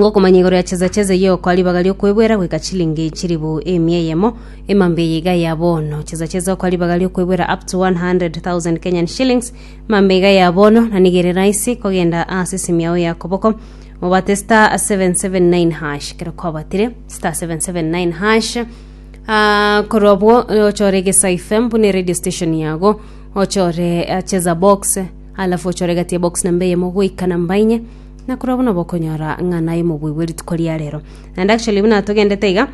Ngokomanya igoro ya chesa chesa yiokoa ribaga riokwebwera goika chilingi chiribu emia eyemo emambe eye iga ya bono. Chesa chesa okoa ribaga riokwebwera up to 100,000 Kenyan shillings mambe iga ya bono na nigo ere raisi kogenda ase esimi yao ya koboko obate star 779 hash ekero kwabatire star 779 hash Ah, korwa obwo ochore gesa fm buna radio station yago ochore eh, cheza box alafu ochore gati ya box namba eyemo goika namba inye Nakorwa buna bokonyora ng'a naye omobui bwe rituko ria rero. And actually buna togendete iga,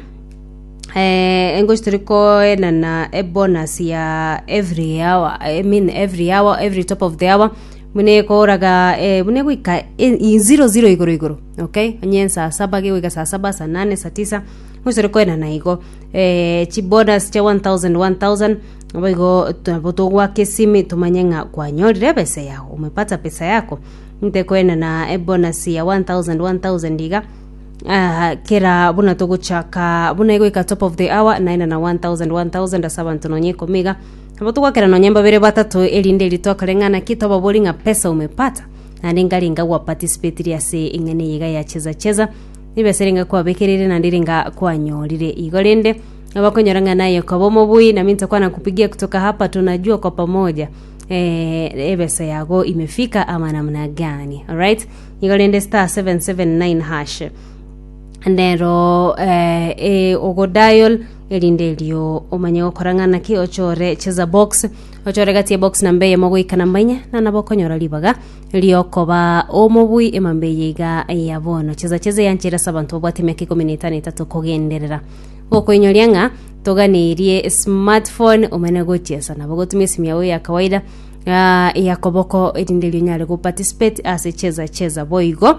eh, engochi turi koenana a bonus ya every hour, I mean every hour, every top of the hour, buna ekoraga eh, buna egoika e- i- zero zero igoro igoro, okay? Onye ensaa saba gegoika saa saba, saa nane, saa tisa, engochi tore koenana igo. Eh, chi bonus chia 1000 1000, boigo to- nabo togwaka esimi tomanye ng'a kwanyorire ebesa yago, umepata pesa yako. Inte kwenena ebonus ya 1000 1000 iga, ah, kera buna togochaka buna egoika top of the hour naenana 1000 1000 ase abanto nonya ikomi iga. Nabo togwakera nonya mbabere batato erinde ritoka reng'ana ki tobabori ng'a pesa umepata naende ngari nga gwa participatiri ase eng'eni eye iga ya cheza cheza nibesa ere nga kwabekereire naende ere nga kwanyorire igo rende abakonyora ng'a naye okaba omobui nami ntakwana kupigia kutoka hapa tunajua kwa pamoja eh, ebesa yago imefika ama namna gani alright igo rende star 779 hash nero eh, e, ogodial erinde erio omanye gokora ng'ana ki ochore cheza box ochore gati ebox namba eyemo goika namba enye na nabo okonyora ribaga riokoba omobui emamba eye iga ya bono cheza cheza eyanchera ase abanto babwate emiaka ikomi na etano etato kogenderera gokoinyoria ng'a Toganirie smartphone omane gochesa nabo gotumia esimu yao ya kawaida ah, ya koboko erinde erio onyare go participate ase cheza cheza boigo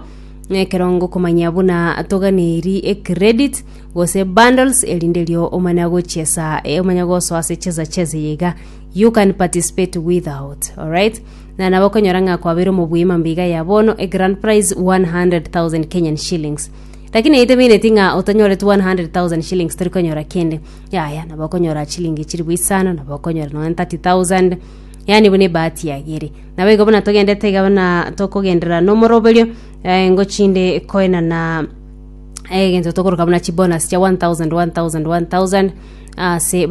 ekerongo komanya buna toganeri e credit gose bundles erinde erio omana gochesa eh, omanya gosoa ase cheza cheza yega you can participate without alright na nabo okonyora ng'a kwabeire omobui mambia iga ya bono e grand prize 100000 kenyan shillings Lakini naitwe baineti ng'a otanyoreti 100,000 shillings tori konyora kende. Yaya, nabo okonyora chilingi chiribu isano, nabo okonyora nonya 30,000. Yani buna ebahati yagere. Nabo igo buna togendete iga buna tokogenderera nomoroberio, eh, ngochinde koenana egento tokoroka buna chibonus chia 1,000, 1,000, 1,000 ase ba-